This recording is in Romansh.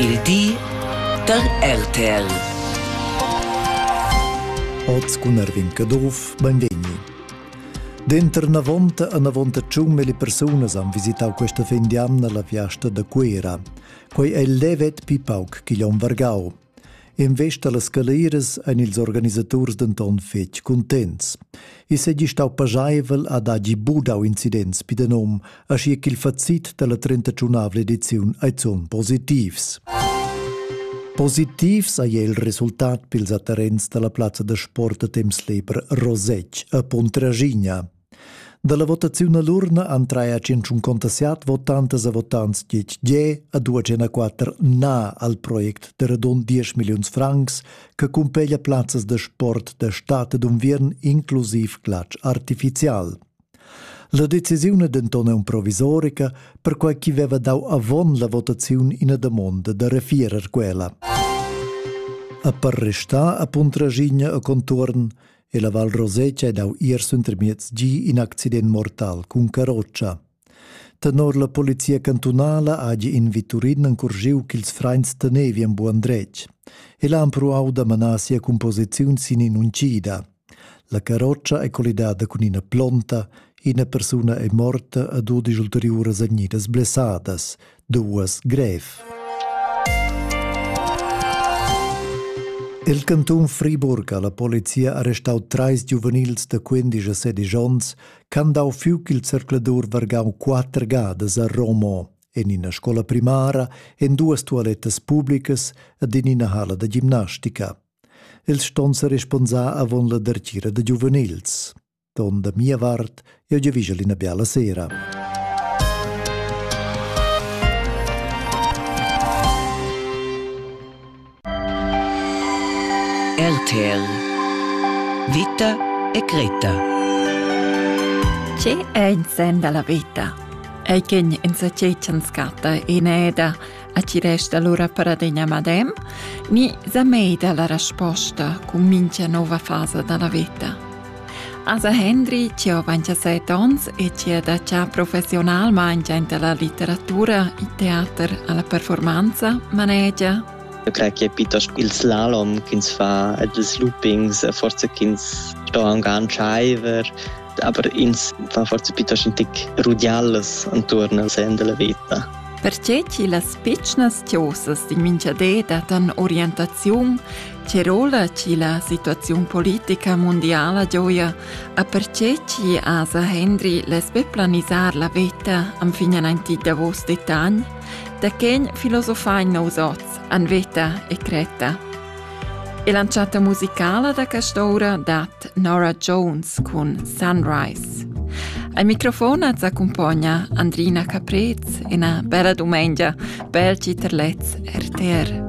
Il di da RTL. Oz cun Erwin Caduff, benvegni. Denter navonta e navonta tschun mille persunas han visitau questa fin di anna la fiasta da Cuera. Quei ei levet pi pauc che Jon Vargau. In vesta las caleires ein ils organisaturs denton fetg contents. I segi stau pajaivel ad hagi budau incidents pi de nom aschia ch'il facit dalla trentatunavla ediziun ei zun positivs. Positivs ei il resultat pils atterrents dalla plazza da sport a temps liber Rosec a Pontraschigna. Dalla votaziun all'urna han trai a 157 votantas a votants dietg G a 204 Na al project de radund 10 milliuns francs che cumpeglia plazzas da sport da stad ed unviern inclusiv glatsch artificial. La decisiun è denton provisorica, perquai ch'i veva dau avon la votaziun ina damonda da refierer quella. A per restar a Puntragigna a conturn e la Val Rosetta ha dau ier suntemiez gi in accident mortal cun carroccia. Tenor la polizia cantunala hagi in viturin encurgiu ch'ils freins tenevi en buon dretg e l'ha empruau da manar sia composiziun sin in'uncida. La carrotscha è collidada cun ina plonta, ina persuna è morta ed dudesch ulteriuras vegnidas blessadas, duas grev. Il cantun Friburg ha la polizia arrestau treis giuvenils da 15 e 16 onns ch'han dau fiuc il zercladur vargau quatter gadas a Romo, en ina scola primara, en duas tualettas publicas ed in ina hala da gimnastica. Els ston sa responsar avon la dertgira da giuvenils. Ton da mia vart, eu giavigel ina biala sera. RTL Vita e Greta Che è in sen della vita? Ei kin in sa cechan scatta in eda Attirest allura per adegna madem, ni zamei dalla resposta cun mincha nova fasa dalla veta. Asa Hendri, che ho 27 ons e che è da già professionalmente inta la letteratura, il teater, alla performanza, manegia Eu crei che è piuttosto il slalom che ins fa ed ils loopings, forse che ins sto anche antschaiver aber ins fa forse piuttosto un tic rudiallas intorno al sen della vita. Perché chi las pitschnas tiosas di minchadeda dan orientaziun, che rola chi la situazione politica mondiala gioia, a perché chi asa Henry les be planisar la vita am finen anti davos detagn, da quen filosofain nous oz, an veta e creta. E l'entschatta musicala da quest'ora dat Nora Jones cun Sunrise. Al microfon az accumpogna Andrina Caprez e una bella domenica per Citerlez RTR.